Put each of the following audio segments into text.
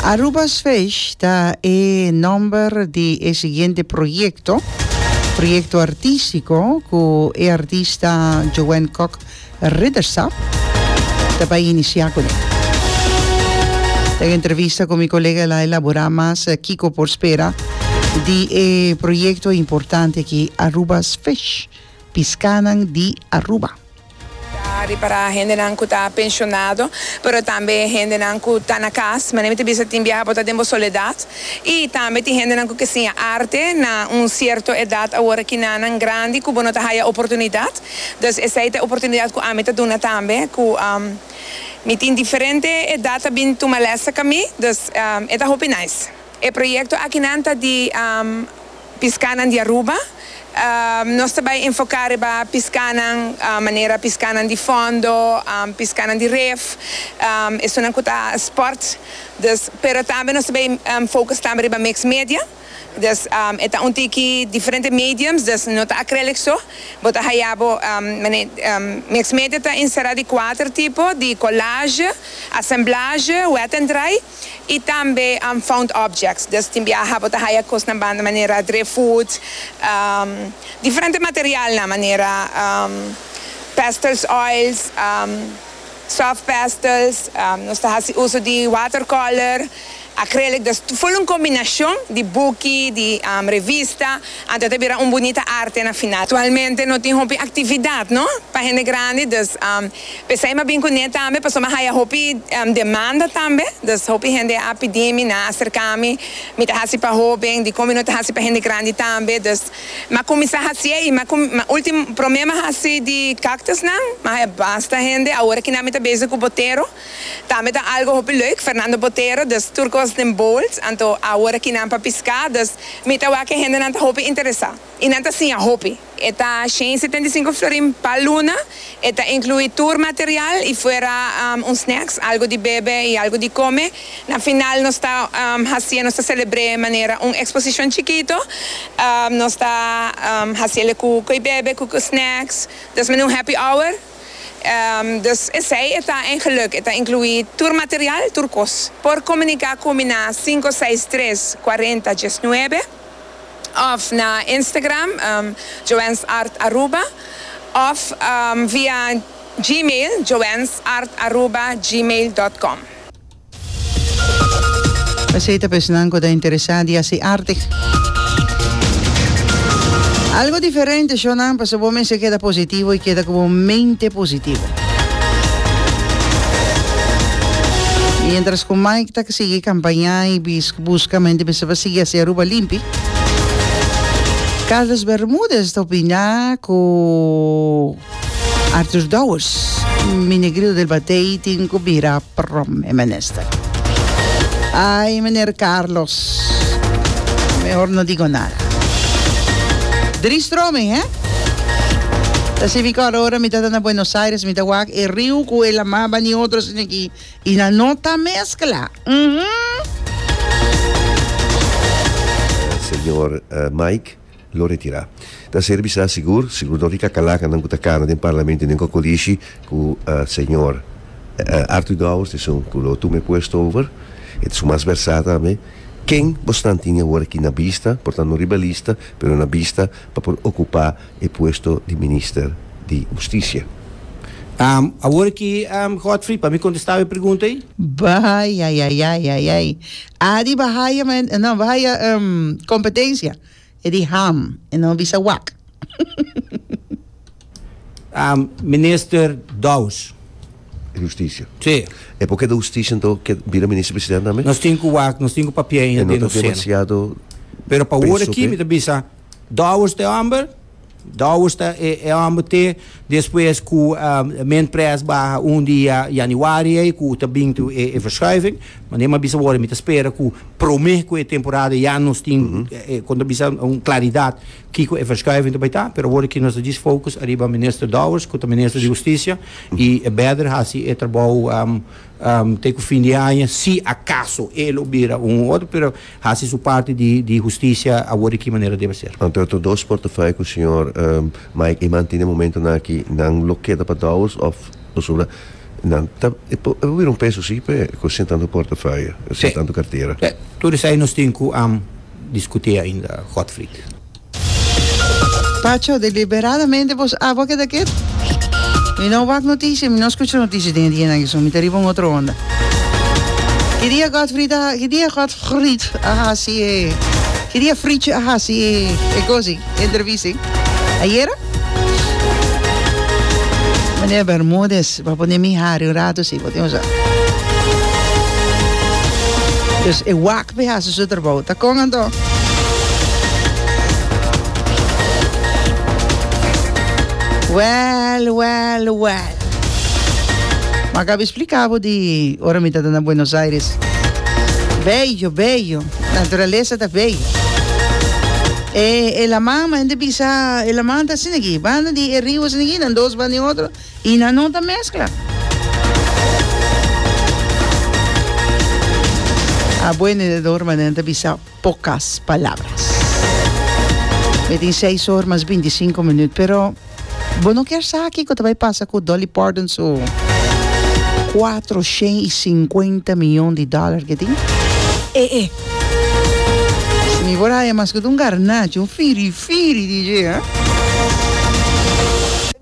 Aruba's Fish ta e nomber di e siguiente proyecto, proyecto artistico cu e artista Joanne Kok Ridderstap ta bay inicia cu ne. Den entrevista cu mi colega el a elabora mas kico por spera di e proyecto importante aki Aruba's Fish, Piscanan di Aruba. Ta ripara hendenan ku ta penshonado, pero tambe hendenan ku ta na kas. Manera mi ta bisa tin biaha bo ta den bo soledat. I tambe tin hendenan ku ke siña arte na un sierto edat awor aki nannan grandi ku bo no ta haya oportunidat. Dus esei ta e oportunidat ku ami ta duna tambe ku mi tin diferente edat ta bin tuma lèsnan ka mi. Dus e ta hopi nice. E proyekto akinan ta di. Piskánan di Aruba, Nos ta bai enfoká riba piskánan manera piskánan di fòndo, piskánan di ref, esunnan ku ta spòrt, dus pero tambe nos ta bai focus tambe riba mix media, dus e ta un tiki diferente mediums, dus no ta acrylic so, bo ta haya bo mix media ta enserá di kuater tipo, di collage, assemblage, wet and dry. y tambe unfound objects, dus tin biaha bo ta haya cosnan banda manera driftwood, diferente materialnan manera pastels oils, soft pastels, nos ta haci uso di watercolor, acrylic, dus full un combinacion di buki, di revista, anto ta bira un bunita arte na final. Actualmente no tin hopi actividad no pa hende grandi, dus. P'esei m'a bin kuné tambe, pasobra m'a haya hopi demanda tambe. Dus hopi hende a pidi mi, nan a serká mi, mi ta hasi pa hóben, dikon mi no ta hasi pa hende grandi tambe. Dus m'a kuminsá hasié i m'a último, promé m'a hasi di káktusnan, m'a haya basta hende. Awor aki nan mi ta bezig ku Botero, tambe ta algu hopi leuk, Fernando Botero, dus tur kos den bols. Anto awor aki nan pa piská, dus mi ta wak e hendenan ta hopi interesá i nan ta siña hopi. E ta shen i setenta i sinku florin pa luna. E ta inkluí tur material i fuera un snacks, algu di bebe i algu di kome. Na final nos ta hasié, nos ta selebr'é manera un eksposishon chikito. Nos ta hasi el ku ko'i bebe, ku ko'i snacks, dus manera un happy hour. Dus esei e ta en geluk. E ta inkluí tur material, tur kos. Por komuniká ku mi na sinku seis tres, kuarenta, diesnuebe. of na Instagram joansartaruba of via Gmail joansartaruba@gmail.com. Pasey ta pa esnan cu ta interesa di haci arte. Algo diferente show nan pasobra bo mester keda positivo y keda cu bo mente positivo. Mientras cu Mike ta sigui campaña y. Busca men di mester pa sigui haci Aruba limpi. Carlos Bermudez ta opina cu Arthur Dowers. Mi negrito del batey tin cu bira prom e menester. Ay meneer Carlos. Mehor no digo nada. Drie stroming he. Ta sibi cu ora mi ta ta na Buenos Aires mi ta wak e riu cu e lama bani otro sino ki Y nan no ta mezcla. Uhmm. Señor Mike lo retira. Ta ser bisa sigur, sigur dor di kakalakan nan ku ta kana den parlamento i den kokolishi ku señor Arthur Dowers ta esun ku lo tuma e puesto over. E ta esun mas versá tambe. Ken bosnan tin awor aki na bista, por tantu no riba lista, pero na bista pa por okupá. e puesto di Minister di Husticia. Am, awor aki, am, Godfrey, pa mi contesta e pregunta ey. Bay, ay, ay, ay, ay, ay. Adi bay haya men, no, bay haya, um, competencia. E di ham, e no bisa wak. Am, Minister Douws. Di Husticia. Si. E por keda Husticia ento ke bira Minister President tambe? Nos tin ku wak, nos tin ku papia ey, no tin nos seno. E no ta demasiado. Pero pa awor aki mi ta bisa. Dowers ta e homber, Dowers ta e e homber te despues ku Mintpress baha un dia Januari ei ku ta bin tu e e verschuiving, ma Nema a bisa wor mi ta spera ku promé ku e temporada ya nos tin e kon ta bisa un klaridat kiko e verschuiving ta bai ta, pero awor aki nos ta djis fokus ariba Minister Dowers ku ta Minister di Hustisia i e bèder hasi e trabou te ku fin di aña si akaso e lo bira un otro, pero. Hasi su parti di di hustisia awor di ki manera debe ser. Anto e otro dos portafoye ku señor Mike Eman tin den momentonan aki nan lo keda pa Dowers òf pasobra nan ta e por e por bira un peso si p'e ku sin tantu portafoye sin tantu kartera. Tur esei nos tin ku diskuté ainda Godfried. Pacho, deliberadamente bos awa keda kiet. Mi no wak noticia, mi no scucha noticia den e dianan aki, so mi ta riba un otro onda. Ki dia Godfrid a, ki dia Godfrid a haci e, ki dia Fritz a haci e, e cosi, e entrevista e? Ayera? Meneer Bermudez, bo a pone mi hari un rato si, bo tin osa. Dus e wak Be hasi su trabou ta con anto? Well well well Ma ka be explica bo di ora mi ta ta na Buenos Aires bello bello naturaleza ta bello e e laman ma hende bisa e laman ta asina aki banda di e rio asina aki nan dos banda di otro y nan no ta mezcla. A boe nedador ma nan ta bisa pocas palabras. Mi tin seis or mas binti sinku minut pero bo no kier sa kico ta bay pasa cu Dolly Parton su cuatro shen y cincuenta miyon di dollar ke tin. Eh eh. Mi por haya mas cu ta un garnacho, un firi firi DJ eh.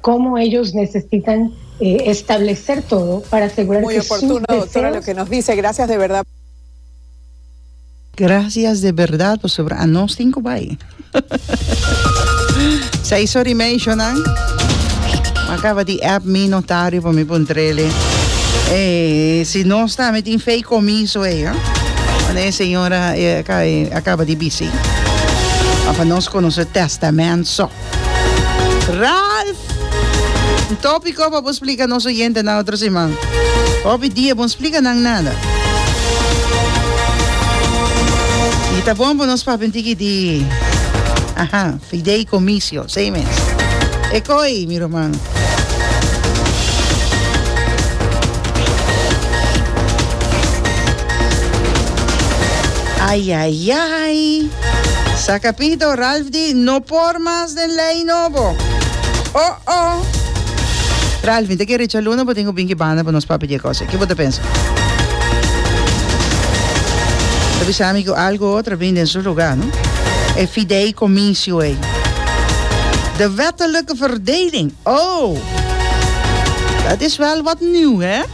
Como ellos necesitan establecer todo para asegurar que sus deseos. Gracias de berdad pasobra a nos tin cu bay. Say sorry meisho nan. Ma caba di app mi notario pa mi pun trele. Hey, si nos ta me tin fei comiso hey, eh? Wanneer señora eh, acaba di busy. Of nos conoce testament so. Ralph! Un tópiko pa bo splika nos oyentenan otro siman. Hopi dia bon splika nan nada. I ta bon pa nos papia un tiki di aha, fideicomicio, esei mes. E koi, mi ruman. Ayayay! Sa capito Ralph di no por mas den ley nobo oh oh. Ralph mi ta kere cha luna bo tin cu bin ki banda pa nos papia die cosa ki bo ta pensa? Ta bisa mi cu algo otro a bin den su lugar no e fideicomisio ey de wettelijke verdeling oh dat is wel wat nieuw he.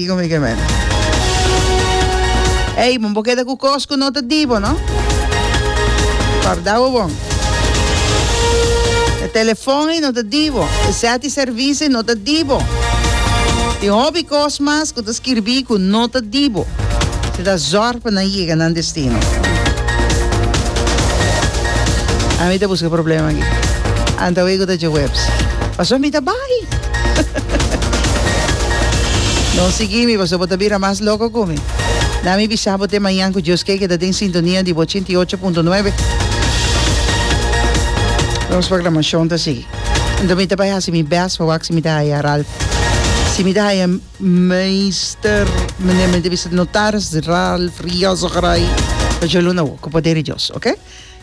Dico mi que men. Ey, bo keda cu cos cu no ta di bo, no? Guarda bo bon. E telefon ey no ta di bo. E set di servicio ey no ta di bo. Tin hopi cos mas cu ta skirbi cu no ta di bo. Asina ta zorg pa nan yega nan destino. Ami ta busca problema aki. Anto awey cu ta dje webs. Pasobra mi ta bay. No sigui mi paso bo ta bira mas loco cu mi. Na mi bisa bo te mañan cu Dios ke keda den sintonia di bo ochenta y ocho punto nuebe. Nos programacion ta sigui. Anto mi ta bay haci mi best pa wak si mi ta haya Ralph. Si mi ta haya Meester, mende mi ta bisa notaris Ralph Riozo Garay. Ta djo luna wok cu poder di Dios, ok?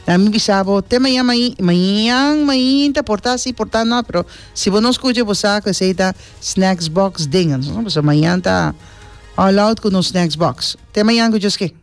Na mi bisa bo te mañan mañan. Mañan mainta por ta si por ta no pero. Si bo no scucha bo sa cu esey ta snacks box dinges, no? Pasobra mañan ta all out cu nos snacks box. Te mañan cu Djosky.